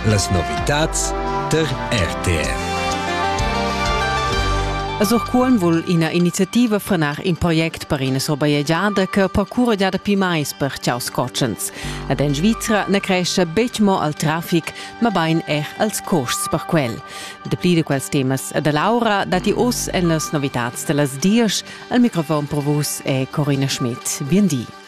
Las novitads tar RTR. A Surcuolm vul ina iniziativa frenar in project per ina surbajegiada che percurra già dapi mais per ciaus cotschens. Ed en Svizra na cresce betg mo al traffic, mabain er als custs per quel. Dapli da quels temas da Laura datti oz en las novitads da las dies. Al microfon per vus è Corina Schmidt. Bien di.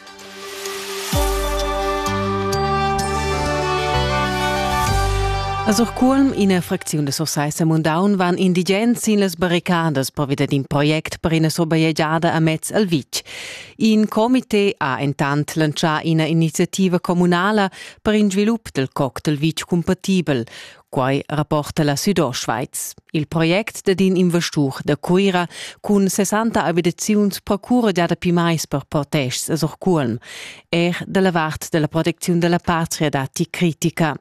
A Surcuolm, ina fracziun da Sursaissa Mundaun, van indigens sin las barricadas pervi d'in project per ina surbajegiada amez al vitg. In comité ha entant lantschà ina iniziativa communala per in svilup del coc del vitg cumpatibel. Quai rapporta la Südostschweiz. Il project dad in investur da Cuira cun 60 abitaziuns procura gia dapi mais per protests a Surculm, er dalla vart della protecziun della patria datti critica.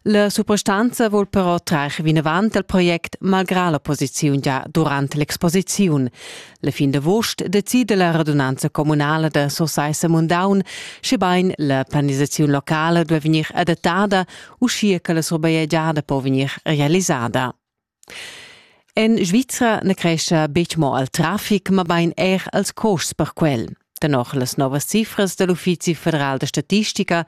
La suprastanza vuol però trar vinavant al project malgrà l'opposiziun già durant l'exposiziun. La fin d'avost decide la radunanza comunala da Sursaissa Mundaun, schebain la planisaziun locala duai vegnir adattada uschia che la surbajegiada po vegnir realisada. En Svizra na crescha betg mo al traffic, mabain er als costs per quel. Tenor las novas cifras dal Uffizi federal da statistica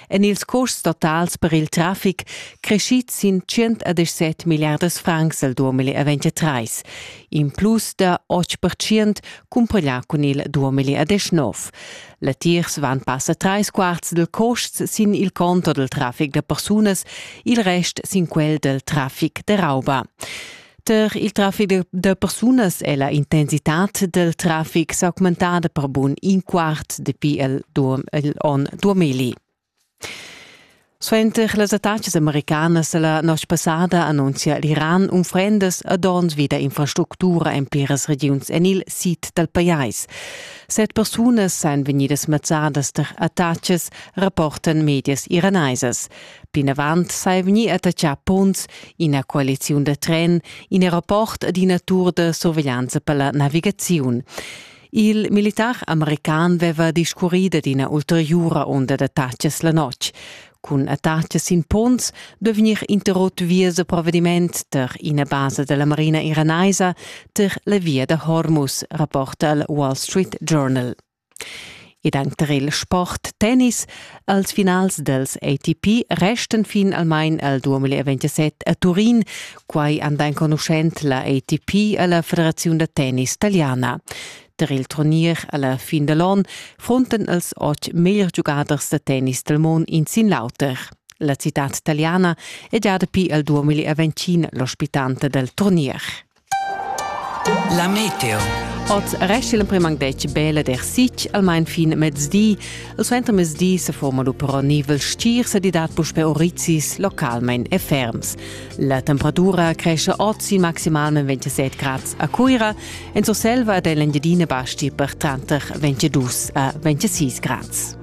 èn ils costs totals per il traffic crescids sin 117 milliardas francs el 2023, in plus da 8% cumpareglià cun il 2019. Latiers van passa trais quarts dal costs sin il conto dal traffic da persunas, il rest sin quel dal traffic da rauba. Per il traffic da persunas è la intensitad del traffic s'augmentada per bun in quart dapi il, il onn 2000. Suenter las attacas americanas da la notg passada annunzia l'Iran unfrendas ad onns vida infrastructura en pliras regiuns en il sid dal pajais. Set persunas èn vegnidas mazzadas tar attacas, rapportan medias iranaisas. Plinavant sei vegnì attaccà ponns, ina coaliziun da tren, in aeroport ed ina tur da surveglianza per la navigaziun. Il militar american veva discurri dad ina ulteriura onda d'attacas la notg. Cun attacas sin ponns duvegnir interrott vias da provvediment tar ina basa della marina iranaisa tar la via da Hormuz, rapporta il Wall Street Journal. ed anc tar il sport tennis. Als finals dels ATP restan fin almain al 2027 a Turin. Quai anda enconuschent la ATP a la Federaziun da tennis italiana. Tar il turnier alla fin da l'on frontan els otg meglier giugaders da tennis dal mond in sin l'auter. La citad italiana è già dapi al 2020 l'ospitante del turnier. La meteo. Oz resta l'emprim anc detg bella der sitg, almain fin mezdi. Il suenter mezdi se forma lu però nivel stir, se di dat puspe orizis localmein e ferms. La temperatura cresce oz in maximalment 27 grad a Cuira, en Surselva ed en l'Engiadina basti per tranter 22 a 26 grad.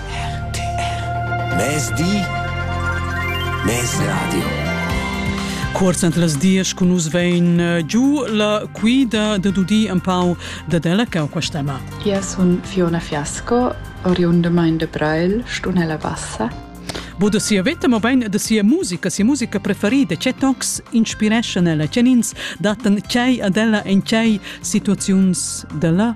Mezdi Mezradio Cuorz ant las dias cun nus vein eh, giu la cuida da dudi un pau da della cau quest'ema. Io sun Fiona Fiasco, oriunda mein de Brail, Stunella Bassa. Bo da sia veta, ma bein da sia musica, sia musica preferida, che tocs inspireschan ella, che nins datan tgei ad ella en tgei situaziuns della